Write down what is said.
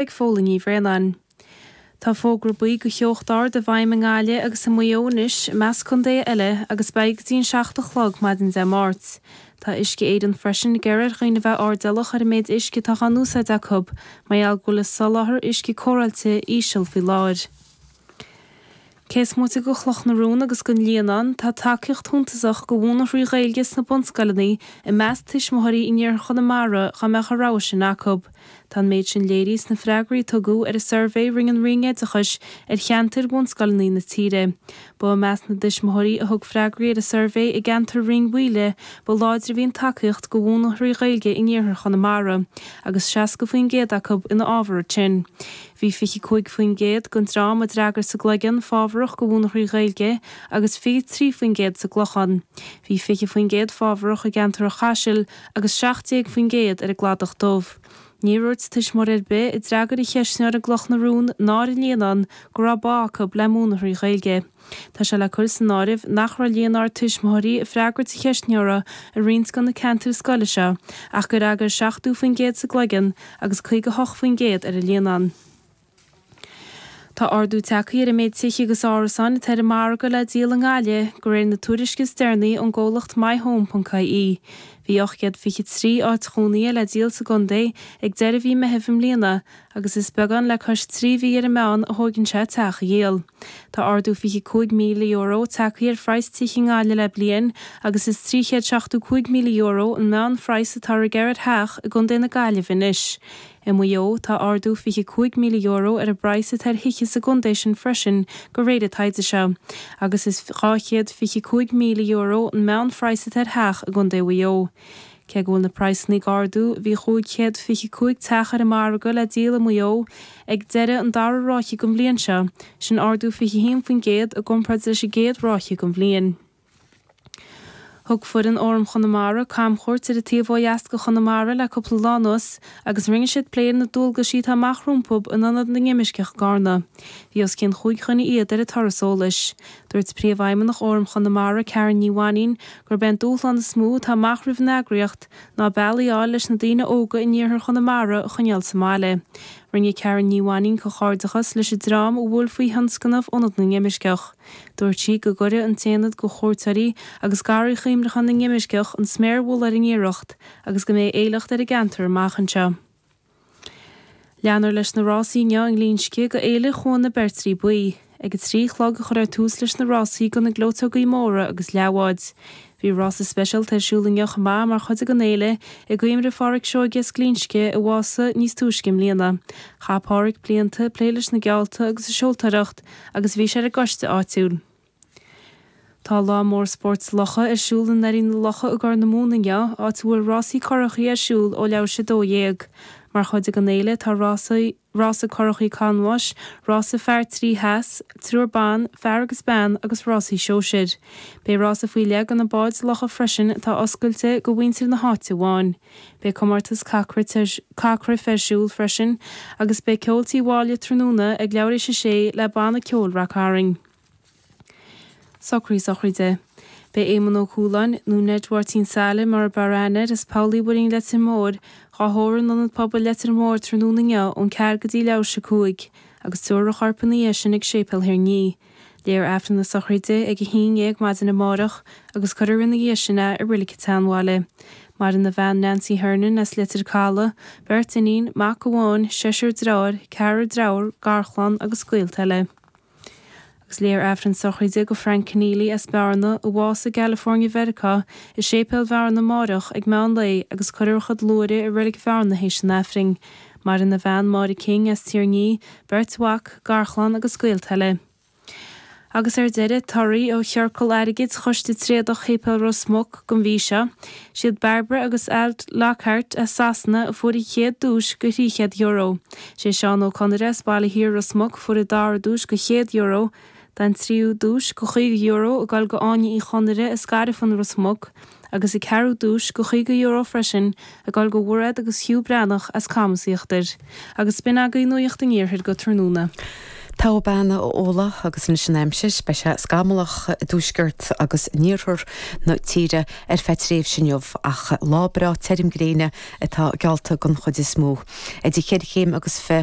ag Fódhla Ní Bhraonáin. Tá fógra buí do theocht ard i bhfeidhm i nGaillimh agus i Maigh Eo anois, i measc contaetha eile, agus beidh go dtí an 7 a chlog maidin Dé Máirt. Tá Uisce Éireann freisin ag iarraidh ar dhaoine bheith airdeallach ar an méid uisce atá á n-úsáid acu, mar gheall go bhfuil an soláthar uisce cóireáilte íseal faoi láthair. Cé is moite de Chloch na Rón agus den Líonán, tá tacaíocht shuntasach do mhúineadh trí Ghaeilge sna bunscoileanna i measc tuismitheoirí in iarthar Chonamara dá mbeadh an rogha sin acu. Tá an méid sin léirithe sna freagraí a tugadh ar an suirbhé rinne an Roinn Oideachais ar cheantair bhunscoileanna na tíre. Ba i measc na dtuismitheoirí a thug freagraí ar an suirbhé i gceantar Rinn Mhaoile ba láidre a bhí an tacaíocht do mhúineadh trí Ghaeilge in iarthar Chonamara, agus 60% acu ina fhábhar sin. Bhí 25% den dream a d'fhreagair sa gCloigeann fábharach do mhúineadh trí Ghaeilge agus 23% sa gClochán. Bhí 20% fábharach i gceantar an Chaisil agus 17% ar an gCladach Dubh. Níor úirt tuismitheoir ar bith a d'fhreagair an cheistneoir i gCloch na Rón ná ar an Líonán go raibh bá acu le múineadh trí Ghaeilge. Tá sé le cur san áireamh nach raibh líon ard tuismitheoirí ag freagairt an cheistneora i roinnt de na ceantair scoile seo ach gur fhreagair 70% sa gCloigeann agus 58% ar an Líonán. Tá ardú tagtha ar an méid tithe agus árasáin atá ar an margadh le díol i nGaillimh, de réir na tuairisce is deireanaí ón gcomhlacht myhome.ie. Bhí 823 áit chónaithe le díol sa gcontae ag deireadh mhí Meithimh i mbliana agus is beagán le cois trí mhí ar an meán a thóigeann sé teach a dhíol. Tá ardú €25,000 tagtha ar phraghas tithe i nGaillimh le bliain agus is €375,000 an meánphraghas atá á ghearradh ar theach i gContae na Gaillimhe anois. I Maigh Eo tá ardú €25,000 ar an bpraghas atá ar thithe sa gcontae sin freisin de réir an taighde seo, agus is €225,000 an meánphraghas atá ar theach i gContae Mhaigh Eo. Cé go bhfuil na praghsanna ag ardú, bhí 525 teach ar an margadh le díol i Maigh Eo ag deireadh an dara ráithe den bhliain seo, sin ardú 21% i gcomparáid leis an gcéad ráithe den bhliain. Thug foireann Fhóram Chonamara camchuairt ar an taobh ó dheas de Chonamara le cúpla lá anuas agus rinne siad plé ar na dualgaisí atá amach rompu in Ionad na nImirceach i gCarna. Bhí os cionn chúig dhuine fhichead ar an turas eolais. Dúirt Príomhfheidhmeannach Fhóram Chonamara, Karen Ní Mhainín, gurb é an dúshlán is mó atá amach roimh an eagraíocht ná bealaí a fháil leis na daoine óga in iarthar Chonamara a choinneáil sa mbaile. Rinne Karen Ní Mhainín comhghairdeachas leis an dream a bhuail faoi thionscnamh Ionad na nImirceach. Dúirt sí go gcuirfidh an t-ionad do chuairteoirí agus Garraí Chuimhneacháin na nImirceach an sméar mhullaigh ar an iarracht agus go mbeidh éileacht ar an gceantar amach anseo. Leanfar leis na rásaí inniu i nGlinsce go Fhéile Chuan na Beirtrí Buí. Ag a trí a chlog a chuirfear tús leis na rásaí do na gleoiteogaí móra agus leathbháid. Bhí rása speisialta ar siúl inniu chomh maith mar chuid den fhéile i gcuimhne ar Pháraic Seoige as Glinsce a bhásaigh níos túisce i mbliana. Chaith Páraic blianta ag plé leis na geallta agus ag seoltóireacht agus bhí sé ar an gcoiste áitiúil. Tá lá mór spóirt locha ar siúl i nDoirí na Locha i gCorr na Móna inniu, áit a bhfuil rásaí currachaí ar siúl ó leathuair théis a dó dhéag. Mar chuid den fhéile tá rásaí, rása currachaí canbháis, rása fear trí sheas, triúr ban, fear agus bean, agus rásaí sóisir. Beidh rása faoi leith go na báid locha freisin atá oscailte go mhuintir na háite amháin. Beidh comórtas caitheamh cruife ar siúl freisin agus beidh ceol Tigh Mháille tráthnóna ag leathuair théis a sé le banna ceoil rac-tharainn. Socruithe sochraide. Beidh Éamonn Ó Cualáin, nó Ned Mháirtín Saile mar ab fhearr aithne air as Poll Uí Mhuirinn Leitir Móir, dhá thórramh in Ionad Pobail Leitir Móir tráthnóna inniu ón ceathair go dtí leathuair théis a cúig, agus tabharfar a chorp ina dhiaidh sin ag Séipéal Thír an Fhia. Léifear Aifreann na sochraide ag a haon dhéag maidin amárach, agus cuirfear ina dhiaidh sin é i Reilig an tSeanbhaile. Maireann a bhean Nancy Hernon as Leitir Calaidh, beirt iníon, mac amháin, seisear deartháir, ceathrar deirfiúr, garchlann agus gaolta eile. Agus léifear Aifreann sochraide go Frank Kenneally as Bearna a bhásaigh i gCalifornia, Mheiriceá, i séipéal Bhearna amáireach ag meán lae agus cuirfear a chuid luaithre i Reilig Bhearna théis an Aifrinn. Maireann a bhean Máire King as Tír an Fhia, beirt mhac, garchlann agus gaolta eile. Agus ar deireadh, torthaí ó chiorcal airgid Choiste Tréadach Shéipéal Ros Muc, gon mhí seo, Siad Barbara agus Alt Lockhart as Sasana a fuair an chéad duais go thrí chéad euro. Sé Seán Ó Conaire as Baile Thiar Ros Muc a fuair an dara duais go chéad euro. Tá an tríú duais go caoga euro ag goil go Áine Uí Chonaire as Gairfean Ros Muc agus an ceathrú duais go caoga euro freisin ag goil go Mhairéad agus Hugh Breathnach as Camas Íochtair. Agus b'in agaibh Nuacht an Iarthair go tráthnóna. Toghadh bean Uladh agus anois an aimsir, beidh sé scamallach i dtuaisceart agus in iarthar na tíre ar feadh tréimhse inniu ach lá breá tirim gréine atá geallta den chuid is mó. Idir cheithre chéim agus fi.